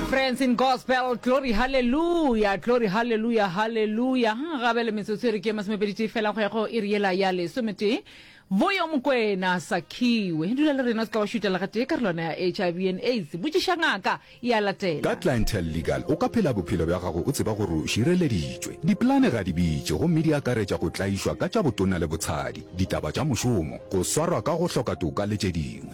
Friends in Gospel, glory, hallelujah, glory, hallelujah, hallelujah. Ha gabe le metsotso e re ke masomepeditee fela go ya go e re yela ya lesometee boyo mokwena sakhiwe dula le rena se tla wa šutela gatee ka relwana ya hiv and aids botšiša ngaka e a latela Ka Clientele Legal o ka phela bophelo bja gago o tseba gore o šireleditšwe. Dipolane ga di bitše gomme di akaretša go tlaišwa ka tša botona le botshadi, ditaba tša mošomo, go swarwa ka go hloka toka le tše dingwe.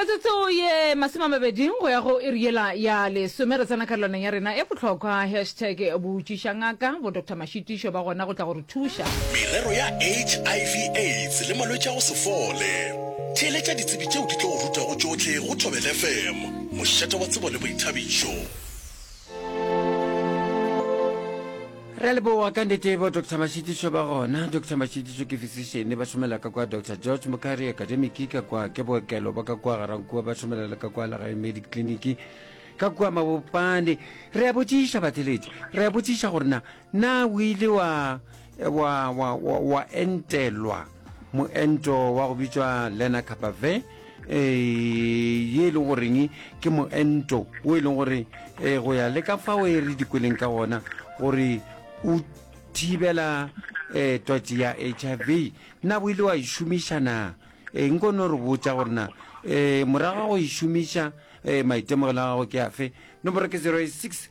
metsotso ye masome a mabedi go ya go iri yela ya lesome re tsena karolwaneng ya rena e bohlokwa hashtag botšiša ngaka bo dr mašitišo ba gona go tla go re thuša merero ya hiv aids le malwetši a go se fole theeletša ditsebi tšeo di tlo go rutago tšohle go thobel fm mošate wa tsebo le boithabišo re a leboa ka nnete bo dr mashitiso ba gona dr mashitiso ke physician ba šomela ka kwa dr george mokari academic ka kwa ke bookelo ba ka kwa garankua ba šomela le ka kwa legae medic clinic ka kwa mabopane re a botšiša batheletši re a botšiša gore na Na o ile wa, wa, wa, wa, wa entelwa moento wa go bitšwa lenacapavir e, ye e leng goreng ke moento o e leng gore e, go ya le ka fao e re dikweleng ka gona gore o thibela um twatši ya h i v na o ile wa e šomiša na e nko no re botša gore na um morago ga go e šomiša um maitemogelo a gago ke afe nomoro ke 086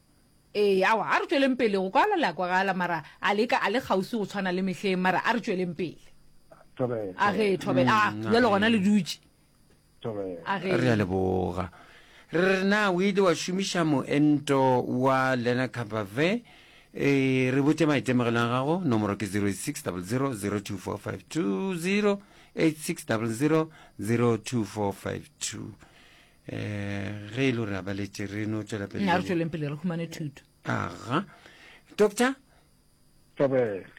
Ee, awa, a re tšweleng pele go kwala le a kwagala, mara a le ka a le kgauswi go tshwana le mehleng, mara a re tšweleng pele. Thobela. A ge, thobela, a, Mm, bjalo gona le dutše. Thobela. A ge. Re a leboga. Re re na o ile wa šomiša moento wa lenacapavir? E, re botše maitemogelo a gago, nomoro ke 086 00 02452, 086 00 02452. um ge e le gore a baletse re no tswela pele a re tsweleng pele re humane thuto aga doctor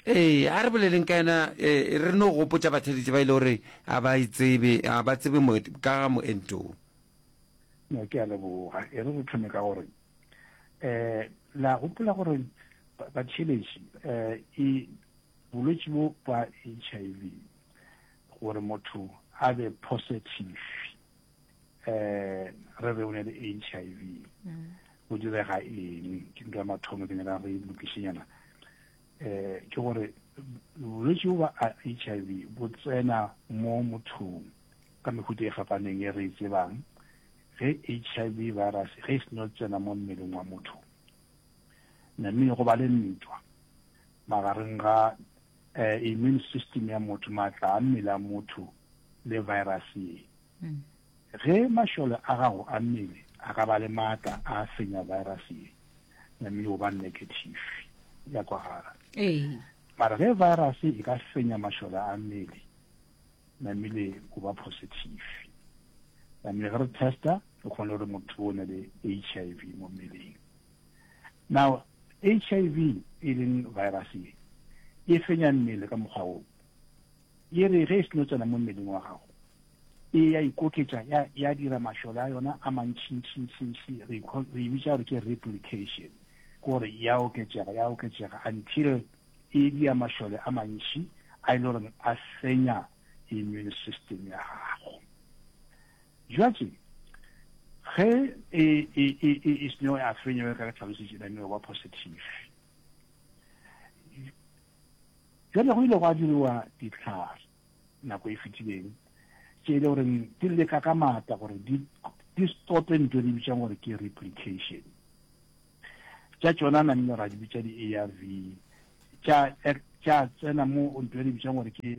ee a re boleleng ka ena eh, re no gopotsa batheletše ba e le gore a ba itsebe a ba tsebe ka ga moentoo no ke a leboga e re re thome ka gore um la gopola gore batheletši um e bolwetse bo ba h i v gore motho a be positive eh re be o ne le HIV go mm. direga eng ke ntwa mathomo ke nyaka go lokišenyana eh ke gore bolwetse ba HIV bo tsena mo mothong ka mehuta e fapaneng e re e tsebang ge HIV virus ge e seno tsena mo mmeleng wa motho name go ba le ntwa magareng ga eh, immune system ya motho maatla a mmele a motho le virus ye Ge mašole a gago a mmele a ka ba le maatla a senya virus ye, namile o ba negative, ya kwagala. Mara ge virus e ka senya mašole a mmele, namile o ba positive. Namile ge re testa, re kgone gore motho o ne le HIV mo mmeleng. Now, HIV e leng virus ye, e fenya mmele ka mokgwa wo. E re ge e seno tsena mo mmeleng wa gago, e ya ikoketša, ya, ya dira mašole a yona a mantšintšintšintši, re ikho, re e bitša gore ke replication, gore ya oketšega, ya oketšega, until e dia mašole a mantši a e le goreng a senya immune system ya gago. Jwatše, ge e, e, e, e, e seno ya fenya, bjalo ka re hlalositše, then e ba positive. Bjale go ile gwa diriwa dihlare nako e fetileng tše e le goreng di leka ka maatla gore di, di stope ntho e re bitšang gore ke replication tša tšona na nne ra di bitša di-arv tša tša tsena mo ntho e re bitšang gore ke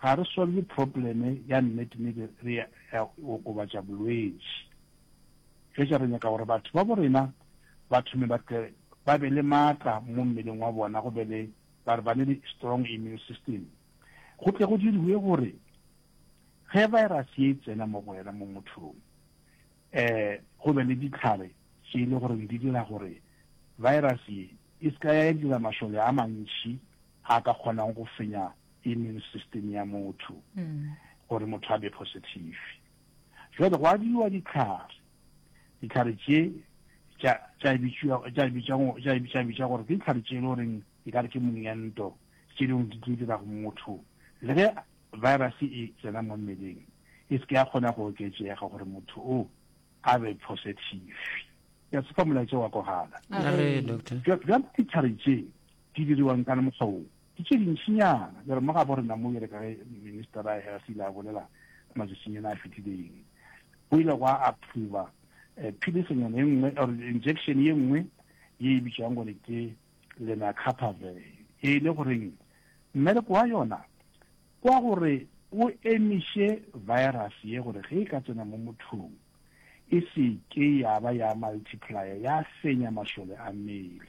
Ga re solve problem ya nnete mme be re ya okobatša bolwetši. Fetša re nyaka gore batho babo rena ba thome ba tle ba be le matla mo mmeleng wa bona go be le ba re ba ne le strong immune system. Go tle go diriwe gore ge virus ye e tsena mo go wena mo mothong eh go be le ditlhare tše e le goreng di dira gore virus ye e se ka ya dira mašole a mantši a ka kgonang go fenya immune system ya motho gore motho a be positive jwale go abiwa ditlhare ditlhare tše tša bitša gore ke ditlhare tše e le goreng e ka re ke monyento tše dingwe di tlo dira go motho le ge virus e tsena mo mmeleng e se ke ya kgona go oketsega gore motho o a be positive ya se fa molaetsa wa kogala jwale ditlhare tše di diriwang ka mokgwao Ke tše dintšinyana, bjale mo gabo rena mo, bjale ka ge Minister ra Health ile a bolela matšatšinyana a fetileng, go ile gwa approver philisenyana e nngwe or injection ye nngwe ye e bitšwago gore ke lenacapavir, e le goreng mmereko wa yona Kwa gore o emiše virus ye gore ge e ka tsena mo mothong e se ke ya ba ya multiplier ya fenya mašole a mmele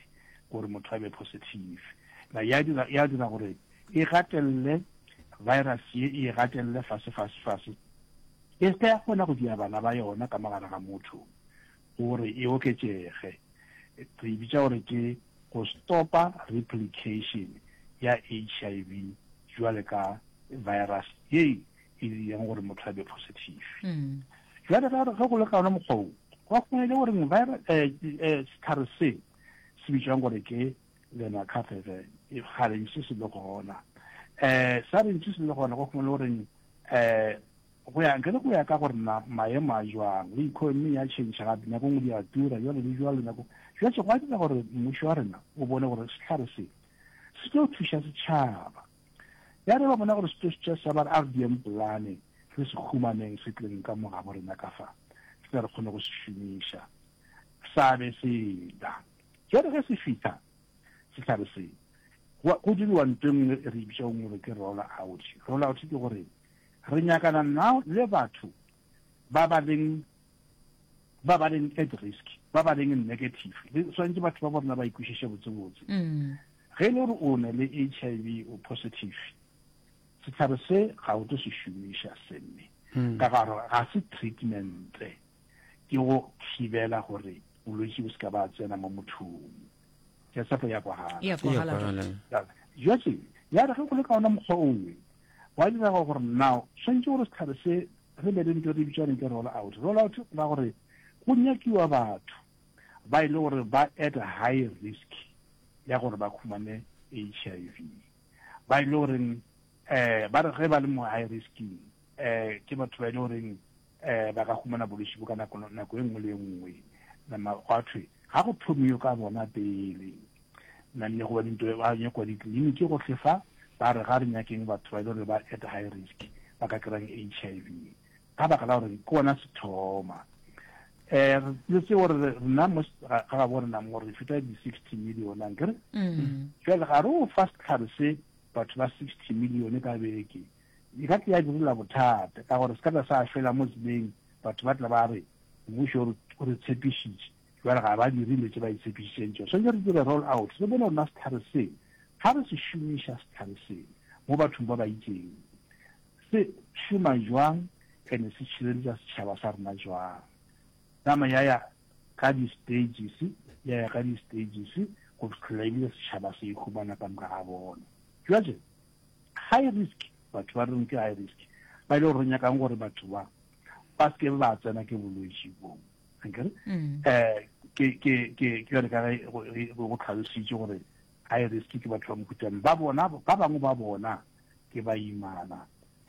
gore motho a be positive. Na ya dira, ya dira gore e gatelele virus ye, e e gatelele fase, fase, fase. E se ke ya kgona go dia bana ba yona ka mo gare ga motho. gore e oketšege. Re e bitša gore ke go stopa replication ya HIV jwale ka virus ye e dirang gore motho a be positive. Jwale ge go le ka ona mokgwa o, go a kgonega gore sehlare se se bitšwang gore ke lenacapavir kgale ntše se le gona. Um sa re ntše se le gona go kgona le gore um Go ya ge le go ya ka gore na maemo a jwang, le economy ya tšhentšha gape, nyakong di a tura, jwalo le jwalo, nyakong. Bjatše gwa dira gore mmušo wa rena o bone gore sehlare se, se tlo thuša setšhaba. Ya re ba bona gore se tlo thuša setšhaba, ba re a re dieng polane, re se humaneng se tleng ka mo gabo rena ka fa, re tle re kgone go se šomiša. Sa be se tla. Jwale ge se fihla, sehlare se, go diriwa ntho e nngwe e re e bitšago gore ke roll-out. Roll-out ke gore Re nyakana now le batho ba ba leng ba ba leng at risk, ba ba leng negative. Le swantse batho ba borna ba ikwishishe botse botse. Mm. Ge le re o ne le HIV o positive, setlhare se ga o tlo se šomiša semme. Mm. Ka garo ga se treatment ke go thibela gore bolwetsi bo se ka ba tsena mo mothong. ya sapo ya kwagala ya kwagala jwatse ya re ge go le ka ona mokgwa ongwe wa direga gore now swantse gore setlhare se re be le nto re bitswane ke roll out roll out ra gore go nyakiwa batho ba e le gore ba at high risk ya gore ba khumane h i v ba e le goreng um ba re ge ba le mo high risking um ke batho ba e le goreng um ba ka humana bološi bo ka nako nako e nngwe le e nngwe nama gwa thwe ga go thomi yo ka bona pele nanne goba dinto ba nyakwa ditleliniki go tlhefa ba re ga re nyakeng batho ba e le gore ba at high risk ba ka kerang h i v ka baka la gore ke ona sethoma um re tse gore rena mo ga ga bo rena mo re feta di-sixty million ankere mm. jale ga re o fa setlhare se batho ba sixty million ka beke E ka tla ya direla bothata, ka gore se ka tla sa fela mo tseleng, batho ba tla ba re, Mmušo o re tshepišitše, bjale ga ba dire dilo tše ba itshepišitšeng tšona. Swanetše re dire roll out, re bone gore na sehlare seo, ga re se šomiša sehlare seo mo bathong ba ba itšeng, se šoma bjang and se tšhireletša setšhaba sa rena bjang. Nama ya ya ka di-stages, ya ya ka di-stages, go fihlela e bile setšhaba se e humana ka moka ga bona. Bjale, High risk, batho ba reng ke high risk ba e le gore re nyakang gore batho ba ba se ke ba tsena ke bolwetši boo ankere um ke ke ke ke yone ka ge go tlhalositse gore high risk ke batho ba mokhutswane ba bona ba bangwe ba bona ke baimana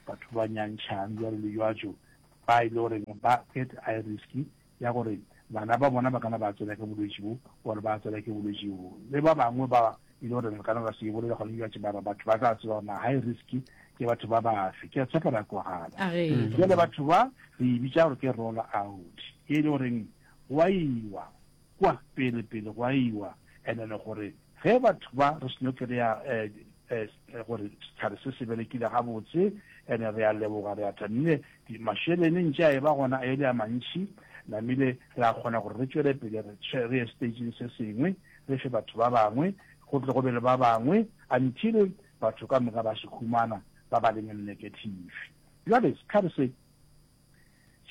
batho ba nyantšhang jalo le jwatso ba e le goreng ba get high risk ya gore bana ba bona ba kana ba tsena ke bolwetši bo or ba tsena ke bolwetši bo le ba bangwe ba e le gore re kana ra se bolele gone bjatše bara batho ba tla tseba na high risk ke batho ba bafe ke a tshepa ra kwagala jale batho ba re e bitša gore ke roll out e le goreng go a iwa kwa pele pele go a iwa and-e le gore ge batho ba re seno kry-a um eh, gore sehlare se se berekile gabotse ene re a leboga re a thabile mašelene ntše a e ba gona a ele a mantšhi namile re a kgona gore re tšwele pele re ye stageng se sengwe re fe batho ba bangwe go tle go be le ba bangwe until batho ka moka ba se humana ba ba leng negative jale setlhare se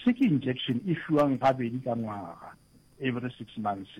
se ke injection e fiwang gabedi ka ngwaga every six months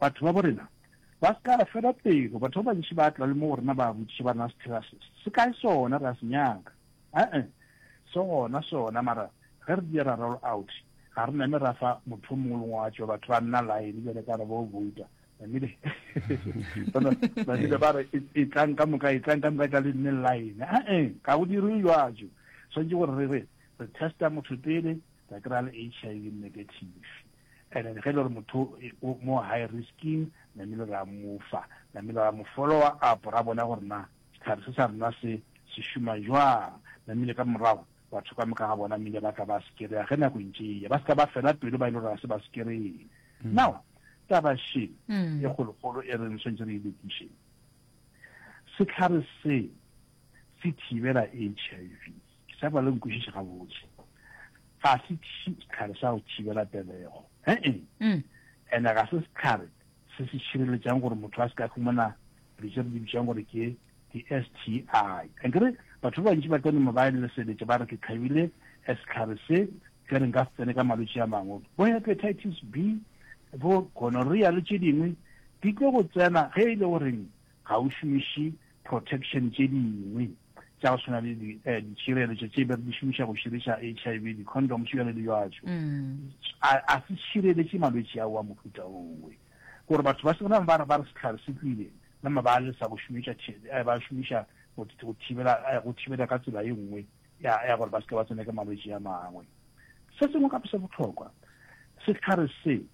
Batho babo rena ba se ka re fela pelo, batho ba bantši ba tla le mo go rena ba botšiša ba rena se thera se, se kae sona, re a se nyaka. Ee, se gona sona, mara ge re dira ra roll out, ga re name ra fa motho o mongwe le ngwe wa tšwa, batho ba nna line bjale ka re bo vouta, namile? Bona, namile ba re e, e tlang ka moka, e tlang ka moka, tla le nne line. Ee, ga go dirwe jwajo, swanetše gore re re re testa motho pele, ra kry-a le HIV negative. and then ge e le gore motho mo high risking namile ra mofa namile ra mo followa up ra bona gore na setlhare se sa rena se se šoma jwang namile ka morago batho ka moka ga bona mmile ba tla ba sekereya ge nako ntše eya ba se tla ba fela pelo ba e le gore ga se ba sekereye mm. now taba she mm. e kgolokgolo e reng swantse re ilekiše setlhare se se thibela h i v Ke sa ba le nkwešiše gabotse. Ga se sehlare sa go thibela pelego. He-e. Mm. Ene ga se sehlare se se šireletšang gore motho a se ka fumana dilo tse re di bitšang gore ke di-STI. Ankere batho ba bantši ba tla noma ba lesebetša ba re ke tlhabile eh, sehlare se ke re nka se tsene ka malwetši a mangwe bo hepatitis B bo gonorrhea le tše dingwe di tlo go tsena ge e le goreng ga o šomiše protection tše dingwe tša go tshwana le ditšhireletšo tše be re di šomiša go širiša HIV, di-condoms bjale le jwatšo, a se šireletše malwetši ao a mohuta owe. Gore batho ba se gona ba re sehlare se tlwile, nama ba lesa go šomiša ba šomiša go thibela go thibela ka tsela e nngwe ya gore ba se ke ba tsene ke malwetši a mangwe. Se sengwe gape se bohlokwa, sehlare se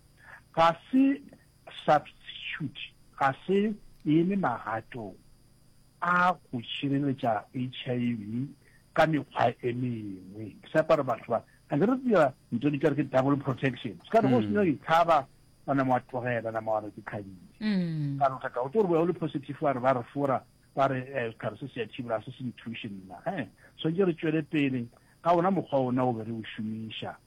ga se Substitute ga se eme magatong a go šireletša HIV ka mekgwa e mengwe. Ke sa kwa re batho ba, a ke re dira ntho di kare ke double protection. Se ka re go se nywa ditlhaba, wa nama wa tlogela, nama wa re ke kgabile. Mm. Ka notla ka o tlo re boya o le positive wa re ba re fora, ba re eh, setlhare se se ya thibola, se se nthuše nna. Eh, swantse re tšwele pele ka ona mokgwa ona o be re o šomiša.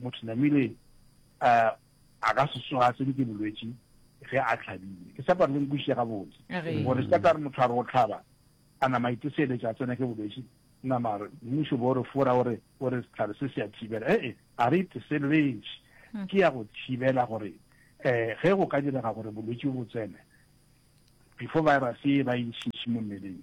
Motho namile a a ka se tsoga tse ke bolwetši ge a tlhabile. Ke sepa re le nkwišiše gabotse. Gore se ka re motho a re o tlhaba a nama iteseletša a tsena ke bolwetši nama re mmušo bo re fora o re o re setlhare se se a thibela. E e a re iteseletše ke ya go thibela gore eh ge go ka direga gore bolwetši bo tsene before virus e ba e ntšhintšhi mo mmeleng.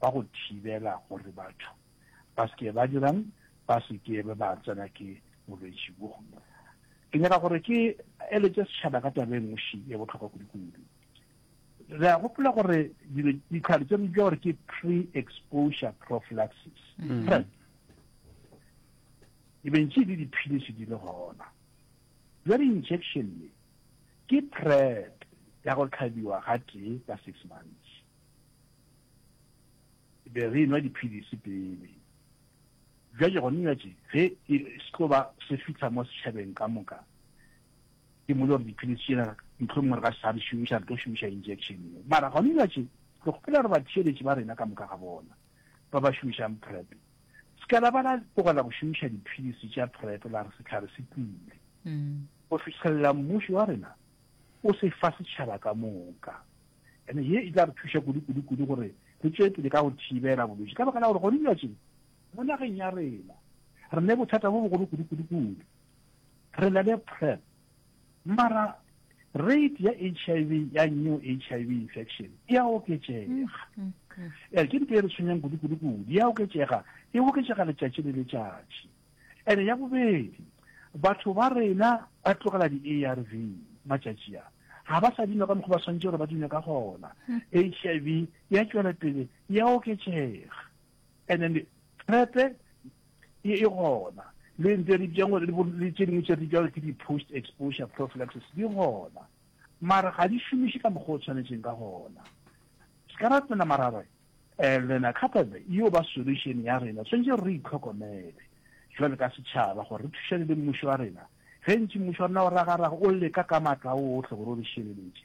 ba go thibela gore batho ba se ke ba dirang, ba se ke be ba tsena ke bolwetši bjo. Ke nyaka gore ke eletše setšhaba ka taba e nngwe e bohlokwa kudu-kudu. Re a gopola gore ditlhare tse re bitša gore ke pre-exposure prophylaxis, mm-hmm. PrEP, e bentše le diphilisi di le gona. Jwa di-injection ke PrEP ya go tlhabiwa ga tee ka six months. Be re enwa diphilisi pele. Bjale gona nyatše, ge e s'tlo ba se fihla mo setšhabeng ka moka, ke mmoditše gore diphilisi tšena mohlomongwe re ka se sa di šomiša, re tlo šomiša injection ye. Mara gona nyatše, re kgopela gore batheeletši ba rena ka moka ga bona, ba ba šomišang PrEP, s'ka la ba la tlogela go šomiša diphilisi tša PrEP la re sehlare se tlile, go fihlelela mmušo wa rena o se fa setšhaba ka moka. Ene ye e tla re thuša kudu-kudu-kudu gore re tšwee pele ka go thibela bolwetši, ka baka la gore gone bjatšeng mo nageng ya rena re ne bothata bo bogolo kudu-kudu-kudu. Re na le PrEP, mara rate ya HIV, ya new HIV infection, e a oketšega. Mm, mm, mm. Ke ntho e re tshwenyang kudu-kudu-kudu, e a oketšega, e oketšega letšatši le letšatši. Ene ya bobedi, batho ba rena ba tlogela di-ARV matšatši a, ga ba sa di nwa ka mokgwa ba swantše gore ba di nwe ka gona. HIV hmm. ya tšwela pele ya oketšega, and then PrEP-e e, e gona le ntse di bjang gore le tše dingwe tše di bjang ke di-post exposure prophylaxis di gona mara ga di šomiše ka mokgwa o tshwanetseng ka gona se ka ratela marabe And then a couple e yo ba solution ya rena. Swantše re itlhokomele jwale ka setšhaba gore re thušane le mmušo wa rena. Gentši mmušo wa rena o ragaraga, o leka ka matla ohle gore o re šireletše.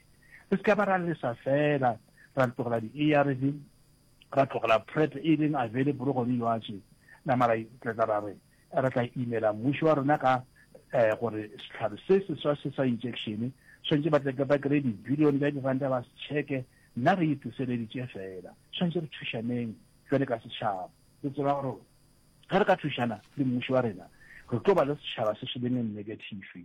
Re se ka ba ra lesa fela ra tlogela di-ARV, ra tlogela PrEP e leng available gone yoatše, nama ra itletla ra re, re tla imela mmušo wa rena ka um gore sehlare se seswa se sa injekšene swantše ba tle ba kry-e dibilione tša diranta ba se tšheke nna re itliseleditše fela swantše re thušaneng jwale ka setšhaba re tseba gore ge re ka thušana le mmušo wa rena re tlo ba le setšhaba se se leng negative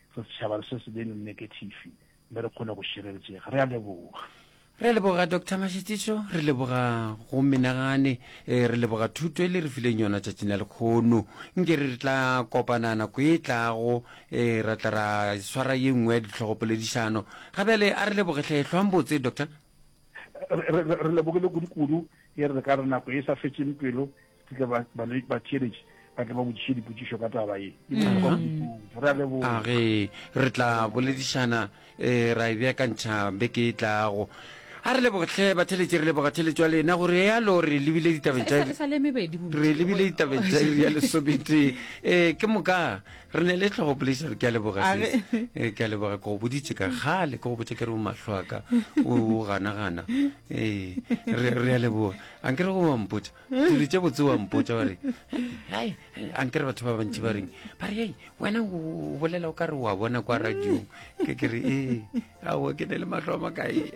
Re setšhaba re se se be no nekethifi mme re kgone go šireletsega. Re a leboga. Re a leboga Doctor Mashitiso, re leboga go menagane, eh, re leboga thuto e le re fileng yona tšatšing la lekgono. Nke re re tla kopana nako e tlago, eh, ra tla ra swara ye nngwe ya ditlhogopoledišano. Ga bjale a re leboge hle, hlwang botse Doctor. Re, re, re lebogile kudu-kudu, e re re ka re nako e sa fetšeng pelo, ke tle batheeletši ba tle ba botšiše dipotšišo ka taba ye e bohlokwa kudu re a leboga age re tla boledišana um ra e beakantšha beke e tlago a re lebogetlhe batheletši re leboga theletšo ya lena gore yalo re lebile ditabeng tša re lebile ditabeng tša iri ya lesobete um ke moka re ne le tlhogo poledišano ke a leboga um ke a leboga ke go boditše ka gale ke go botša ke re o matlho a ka o ganagana um re a leboga a nke re go bampotša dilo tše botse wa mpotsa wa re hai a nkere batho ba bantši ba reng ba re ei wena o bolela o ka re wa bona kwa radiong ke kere ee ao ke ne le matlho a makae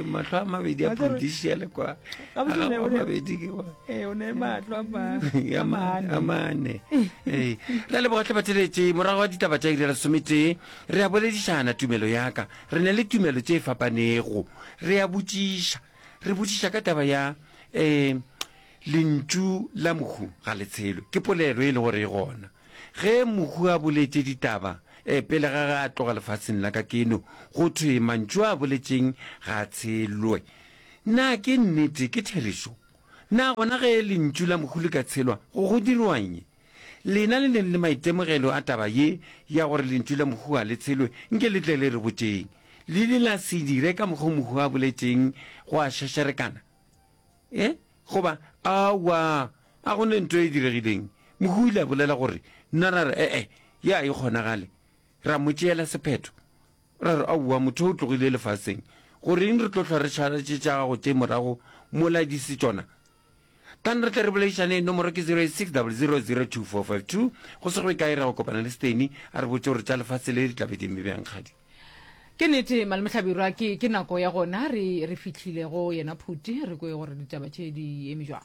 matlho a mabedi a prudicial kwa mabedi ke amane ee ra le bogatlhe bateletse morago wa ditaba tša irela sometee re a boledišana tumelo yaka re ne le tumelo tše fapanego re a botšiša Re botšiša ka taba ya um Lentšu la Mohu ga le tshelo. Ke polelo e le gore e gona. Ge Mohu a boletše ditaba um pele ga ge a tloga lefaseng la ka keno, go thwe mantšu a boletšeng ga a tshelwe. Na ke nnete? Ke therešo? Na gona ge Lentšu la Mohu le ka tshelwa, go go dirwañi? Lena le neng le maitemogelo a taba ye ya gore Lentšu la Mohuwa le tshelwe, nke le tle le re botšeng, Le ile la se dire ka mokgo Mohuwa a boletšeng gwa šašarekana? E? Goba, Aowa, a go ne nto e diregileng. Mohuwa o ile a bolela gore, Nna ra re, E-e, ye a e kgonagale. Ra mo tšeela sephetho. Ra re, Aowa, motho o tlogile lefaseng. Goreng re tlo hlwa re šaletše tša gago tše morago mola di se tšona? Kan re tle re boledišane, nomoro ke 0860002452. Go se go e kae ra go kopana le Steny a re botše gore tša lefase le di tla be di eme bjang kgadi. Ke nete Mal Mohlabirwa, ke ke nako ya gona re re fihlile go yena phuti re kwe gore ditaba tše di eme bjang.